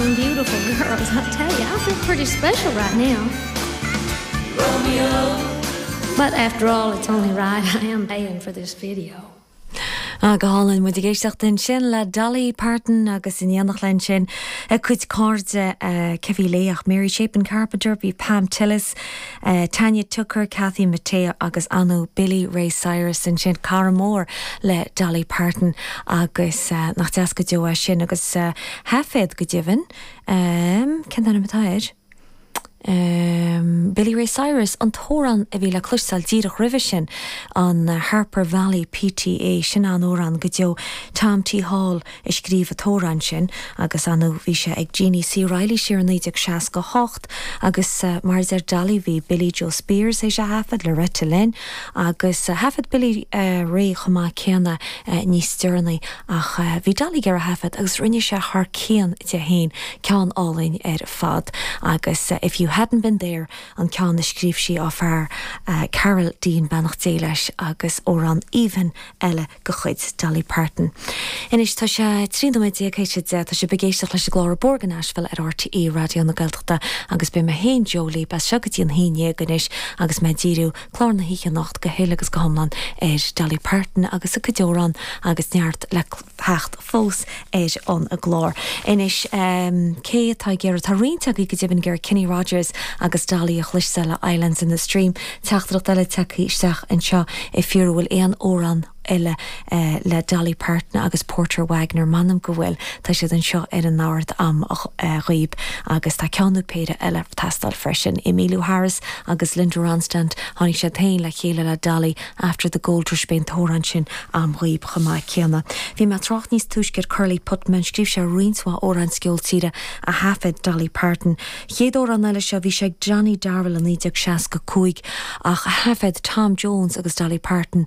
Them beautiful girls, I tell ya, I feel pretty special right now. Romeo. But after all, it's only right I am paying for this video. Ah, go hálainn. Muid ag éisteacht ansin le Dolly Parton agus in éineacht léi ansin a cuid cairde, cé bhí léi ach Mary Chapin Carpenter, bhí Pam Tillis, Tanya Tucker, Kathy Mattea agus ar ndóigh Billy Ray Cyrus ansin. Cara mór le Dolly Parton agus nach deas go deo é sin agus. thaifead go deimhin. Cén t-ainm atá air? Billy Ray Cyrus an t-amhrán a bhí le cloisteáil díreach roimhe sin, an Harper Valley PTA, sin an-amhrán go deo. Tom T. Hall a scríobh an t-amhrán sin agus bhí sé ag Jeannie C. Riley siar i 1968 agus mar a deir Dolly bhí Billie Jo Spears théis a thaifead, Loretta Lynn agus thaifead Billy Ray chomh maith céanna níos deireanaí. Ach bhí Dolly ag iarraidh é a thaifead agus rinne sé thar cionn di fhéin, ceann álainn ar fad. Agus If You Hadn't Been There, an ceann a scríobh sí dá fear, Carl Dean, beannacht Dé leis, agus amhrán aoibhinn eile de chuid Dolly Parton. Anois tá sé 13 nóiméad théis a deich, tá sibh ag éisteacht leis an gclár An Bóthar go Nashville ar RTÉ Raidió na Gaeltachta agus beidh mé féin, Jó, libh as seo go dtí an haon déag anois agus mé ag díriú Clár na hoíche anocht go huile agus go hiomlán ar Dolly Parton agus a cuid amhrán agus neart le theacht fós ar an gclár. Anois cé atá ag iarraidh, tá roinnt agaibh go deimhin ag iarraidh Kenny Rogers agus Dolly a chloisteáil le Islands in the Stream, teachtaireacht eile tagtha isteach anseo ag fiafraí an bhfuil aon amhrán, eile le Dolly Parton agus Porter Wagoner, m'anam go bhfuil, tá siad anseo ar an ard am dhaoib agus tá ceann nó péire eile ag teastáil freisin. Emmylou Harris agus Linda Ronstadt, tháinig siad féin le chéile le Dolly After the Gold Rush, beidh an t-amhrán sin am dhaoib chomh maith céanna. Bhí mé ag trácht níos túisce ar Curly Putman, scríobh sé roinnt mhaith amhráin sa gceol tíre a thaifead Dolly Parton. chéad amhrán eile seo, bhí sé ag Johnny Darrell i 1965 ach thaifead Tom Jones agus Dolly Parton,